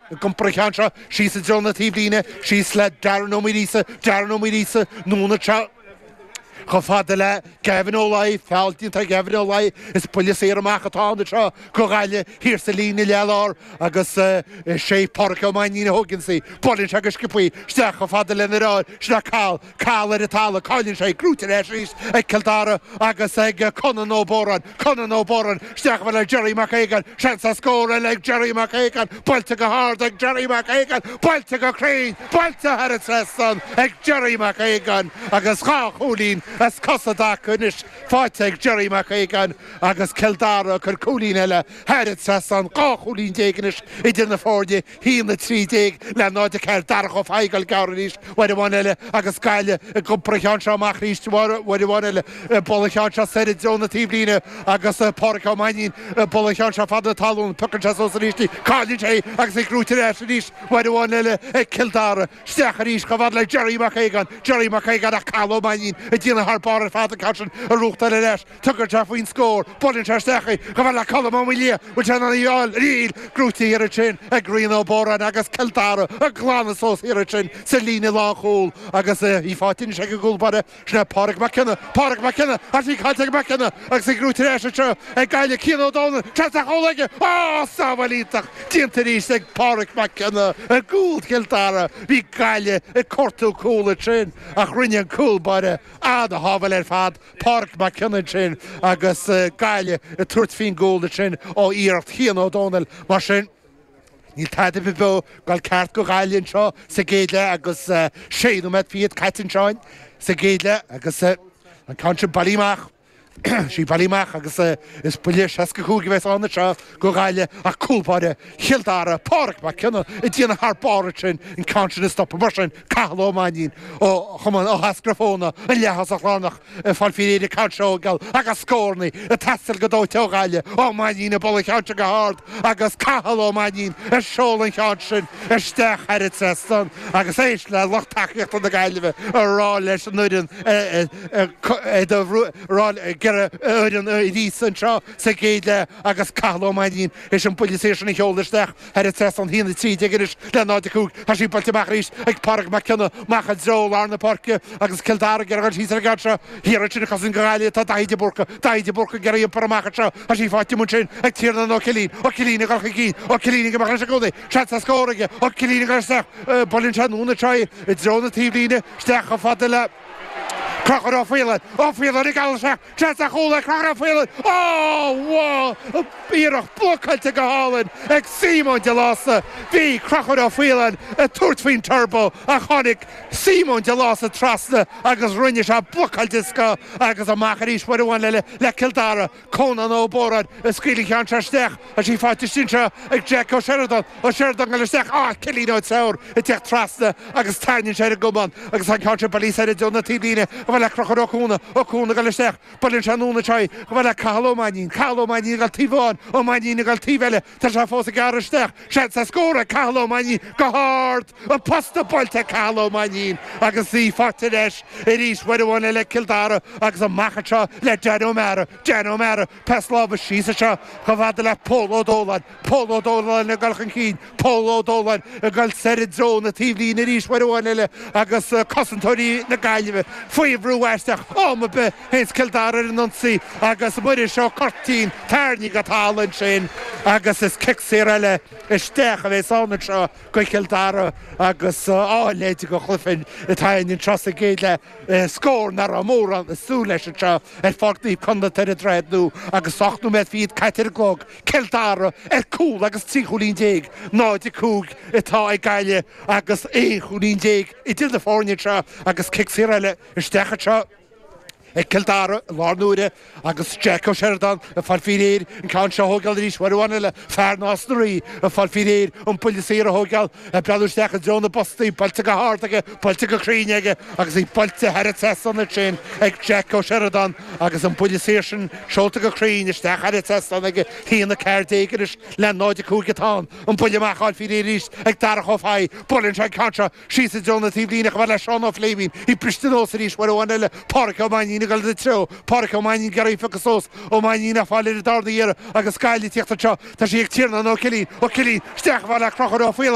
ag iompar an cheann seo, síos i dtreo na taobhlíne, síos le Darren Ó Muiríosa, Darren Ó Muiríosa, anonn anseo, chomh fada le Gavin Ó Laoi, feall déanta ar Gavin Ó Laoi, is buille saor amach atá ann anseo, go Gaillimh, thiar sa líne ledlár, agus is é Pádraig Ó Mainnín a thóigeann í, buaileann sé go sciobtha í isteach chomh fada lena dheartháir sin é Cathal, Cathal ar an talamh, cailleann sé í, gnóite ar ais arís ag Cill Dara agus ag Conán Ó Bodhráin. Conán Ó Bodhráin, Isteach bhall ag Jerry Mac Aogáin, seans ar scór eile ag Jerry Mac Aogáin, buailte go hard ag Jerry Mac Aogáin, buailte go cruinn, buailte thar an trasnán ag Jerry Mac Aogáin agus dhá chúilín as cosa i dtaca anois faighte ag Jerry Mac Aogáin agus Cill Dara ag cur cúilín eile thar an trasnán, dhá chúilín déag anois idir na foirne. haon a trí déag le náid a ceathair Darach Ó Fathaigh ag dul gearr arís uair amháin eile agus Gaillimh ag iompar an cheann seo amach arís uair amháin eile ag bualadh an cheann seo soir i dtreo na taobhlíne agus Pádraic Ó Mainnín ag bualadh an cheann seo feadh na talún piocann sé suas arís í cailleann sé í agus í gnóite ar ais arís uair amháin eile ag Cill Dara isteach arís chomh fada le Jerry Mac Aogáin Jerry Mac Aogáin ach Cathal Ó Mainnín ag déanamh thar barr ar fad an ceann sin a bhuachtáil ar ais tugann sé faoin scór, buaileann sé isteach í, chomh fada le Colm Ó Maoildhia, bhfuil sé in ann í a fháil níl, gnóite thiar ansin ag Rian Ó Bodhráin agus Cill Dara ag glanadh suas thiar ansin sa líne lánchúil agus í faighte anois ag an gcúl báire, sin é Pádraig Mac Cionnaith, Pádraig Mac Cionnaith, ach tá sí caillte ag Mac Cionnaith agus í gnóite ar ais anseo ag Gaillimh, Cian Ó Domhnaill, seans ar chúl aige, á, sábháil iontach déanta arís ag Pádraig Mac Cionnaith i gcúl Chill Dara, bhí Gaillimh ag cuartú cúl ansin ach rinne an cúl báire an-shábháil ar fad. Pádraig Mac Cionnaith sin agus Gaillimh ag tabhairt faoin gcúl ansin ó iarracht Chian Ó Domhnaill. Mar sin, níl tada ar bith beo ag dul ceart go Gaillimh anseo sa gcéad leath agus sé nóiméad fichead caite anseo sa gcéad leath agus an ceann sin bailithe amach. Sea, bailithe amach agus is buille seasca cúig a bheas ann anseo. go Gaillimh ach cúlbáire Chill Dara, Pádraig Mac Cionnaith, ag déanamh thar barr ansin an ceann sin a stopadh. Mar sin, Cathal Ó Mainín ó Chumann Áth Eascrach Fothaine, an leath-thosach lárnach ag fáil faoi réir an ceann seo a thógáil agus scórannaí ag teastáil go dóite ó Ghaillimh, Ó Mainín ag bualadh an cheann sin go hard agus Cathal Ó Mainín ag seoladh an cheann sin isteach thar an trasnán agus éist le lucht tacaíochta na Gaillimhe ag rá leis an fhoireann a rá ag iarraidh a fhoireann arís anseo sa gcéad leath. agus Cathal Ó Mainnín tar éis an buille saor sin a sheoladh isteach thar an trasnán 1 13 anois le 0 5 Tá sí buailte amach arís ag Pádraig Mac Cionnaith, amach i dtreo lár na páirce agus Cill Dara ag iarraidh a dhul síos ar an gceann seo thiar ansin ag cosaint go Gaillimh tá Daithí de Búrca, Daithí de Búrca ag iarraidh í a iompar amach anseo tá sí faighte amuigh ansin ag Tiarnán Ó Cillín, Ó Cillín ag dul chun cinn, Ó Cillín ag imeacht leis i gcónaí seans ar scór aige, Ó Cillín ag dul isteach buaileann sé anonn anseo í i dtreo na taobhlíne isteach chomh fada le Conchúr Ó Faoláin, Ó Faoláin ag dul isteach Tá sí chomh fada le Crochúr Ó Faoláin, iarracht blocáilte go hálainn ag Simon de Lása. Bhí Crochúr Ó Faoláin ag tabhairt faoin turbo ach tháinig Simon de Lása trasna agus rinne sé blocáil den scoth agus amach arís uair amháin eile le Cill Dara. Conán Ó Bóráin a scaoil an ceann seo isteach. Tá sí faighte istigh anseo ag Jack Ó Seireadáin, Ó Seireadáin ag dul isteach ach Cillian Ó Treabhair ag tíocht trasna agus tarraingíonn sé ar an gcamán agus tá an ceann seo bailithe soir i dtreo na taobhlíne chomh fada le Crochúr Ó Cuana, Ó Cuana ag dul isteach, buaileann sé anonn anseo í chomh fada le Cathal Ó Mainnín, Cathal Ó Mainnín ag dul taobh amháin, Ó Mainnín ag dul taobh eile, tá sé fós ag gearradh isteach, seans le scór ag Cathal Ó Mainnín go hard, an posta buailte ag Cathal Ó Mainnín agus í faighte leis arís, uair amháin eile ag Cill Dara agus amach anseo le Danny O'Meara, Danny O'Meara. Pas láimhe síos anseo chomh fada le Pól Ó Dóláin. Pól Ó Dóláin ag dul chun cinn. Pól Ó Dóláin ag dul soir i dtreo na taobhlíne arís uair amháin eile agus cosantóirí na Gaillimhe faoi bhrú aisteach. Am ar bith a théanns Cill Dara ar an ionsaí agus Muiris Ó Curtáin tarraingthe go talamh ansin agus is cic saor eile isteach a bheas ann anseo do Chill Dara agus a leithéid de chluiche atá ann anseo sa gcéad leath. scór nach raibh mórán ag súil leis anseo ar Pháirc Naomh Conlath ar an Droichead Nua agus ocht nóiméad fichead caite ar an gclog, Cill Dara ar chúl agus trí chúilín déag, 0-5 atá ag Gaillimh agus aon chúilín déag idir na foirne anseo agus cic saor eile isteach anseo ag Cill Dara i láthair na huaire. Agus Jack Ó Seireadáin ag fáil faoi réir an ceann seo a thógáil arís uair amháin eile, fear Nás na Rí, ag fáil faoi réir an buille saor a thógáil, ag breathnú isteach i dtreo na bpostaí, buailte go hard aige, buailte go cruinn aige agus í buailte thar an trasnán ansin ag Jack Ó Seireadáin agus an buille saor sin seolta go cruinn isteach thar an trasnán aige, 1-14 anois le 0-5 atá an buille amach a fháil faoi réir arís ag Darach Ó Fathaigh. Buaileann sé an ceann seo. Síos i dtreo na taobhlíne chomh fada le Seán Ó Fléimín, í briste anuas arís, uair amháin eile, Páraic Ó Mainnín, ag dul ina treo, Páraic Ó Mainnín, ag iarraidh í a phiocadh suas, Ó Mainnín, á fáil ar an darna hiarraidh agus Gaillimh ag tíocht anseo, tá sí ag Tiarnán Ó Cillín, Ó Cillín, isteach chomh fada le Crochúr Ó Faoláin.